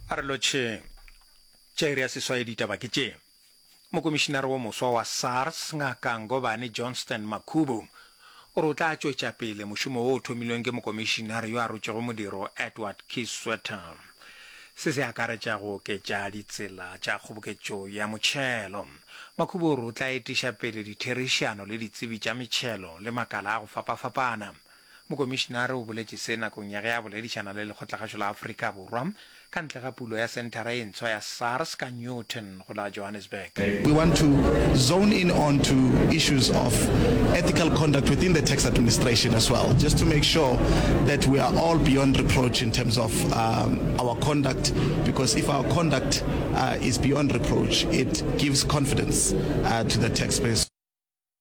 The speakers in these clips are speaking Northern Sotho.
A re lotšheng. Tša iri ya seswai ditaba ke tše. Mokomišinare wo moswa wa SARS, Ngaka Ngobane Johnston Makhubu, o re o tla tšwetša pele mošomo wo o thomilweng ke mokomišinare yo a rotšego modiro Edward Kieswetter. Se se akaretša go oketša ditsela tša kgoboketšo ya motšhelo. Makhubu o re o tla etiša pele ditherišano le ditsebi tša metšhelo le makala a go fapafapana. Mokomišinare o boletše se nakong ya ge a boledišana le Lekgotlagašo la Afrika Borwa ka ntle ga pulo ya senthara e ntshwa ya SARS ka Newton go la Johannesburg. We want to zone in on to issues of ethical conduct within the tax administration as well, just to make sure that we are all beyond reproach in terms of our conduct, because if our conduct is beyond reproach, it gives confidence to the taxpayers.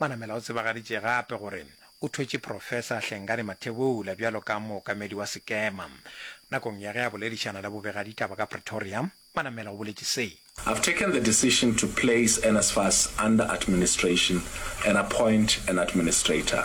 Manamela o tsebagaditše gape gore o thwetše Professor Hlengani Mathebula bjalo ka mookamedi wa sekema. Nakong ya ge a boledišana le bobegaditaba ka Pretoria, Manamela o boletše se. I've taken the decision to place NSFAS under administration and appoint an administrator.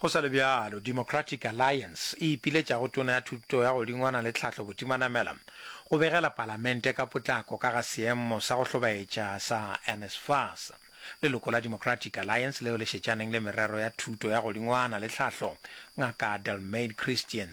Go sa le bjalo, Democratic Alliance e ipiletša go Tona ya Thuto ya Godingwana le Tlhahlo Botimanamela go begela Palamente ka potlako ka ga seemo sa go hlobaetša sa NSFAS. Leloko la Democratic Alliance leo le šetšaneng le merero ya Thuto ya Godingwana le Tlhahlo, Ngaka Delmaid Christian,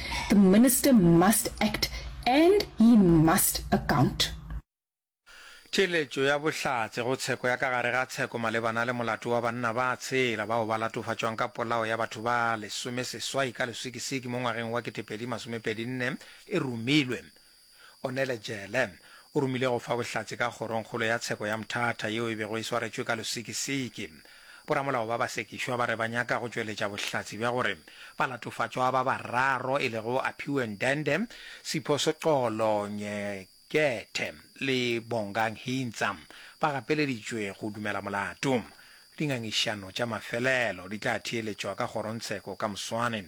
The Minister must act and he must account. Theeletšo ya bohlatse go tsheko ya ka gare ga tsheko malebana le molato wa banna ba tshela bao ba latofatšwang ka polao ya batho ba lesomeseswai ka leswikisiki mo ngwageng wa ketepedi masomepedi nne e romilwe Onele Jele, o romile go fa bohlatse ka kgorongkgolo ya tsheko ya Mthatha yeo e bego e swaretšwe ka losikisiki. Boramolao ba basekišwa ba re ba nyaka go tšweletša bohlatse bja gore balatofatšwa ba bararo e lego Aphiwe Ndende, Sipho Sexolo Nyekethe le Bongang Hintsa ba gapeleditšwe go dumela molato. Dingangišano tša mafelelo di tla theeletšwa ka kgorontsheko ka moswane.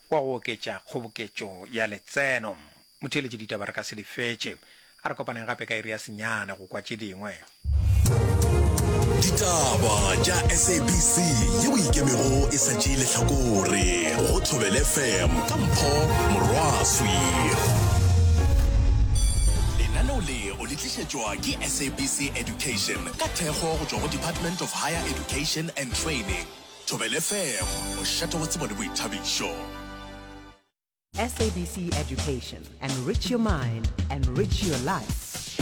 wa go oketša kgoboketšo ya letseno. Motheeletši, Ditaba re ka se di fetše. A re kopaneng gape ka iri ya senyane go kwa tše dingwe. Ditaba tša SABC yeo e ikemego e sa tšee lehlakore go Thobel FM ka Mpho Morwaswi. Lenaneo le o le tlišetšwa ke SABC Education ka thekgo go tšwa go Department of Higher Education and Training. Thobela FM, mošate wa tsebo le boithabišo. SABC Education. Enrich your mind, enrich your life.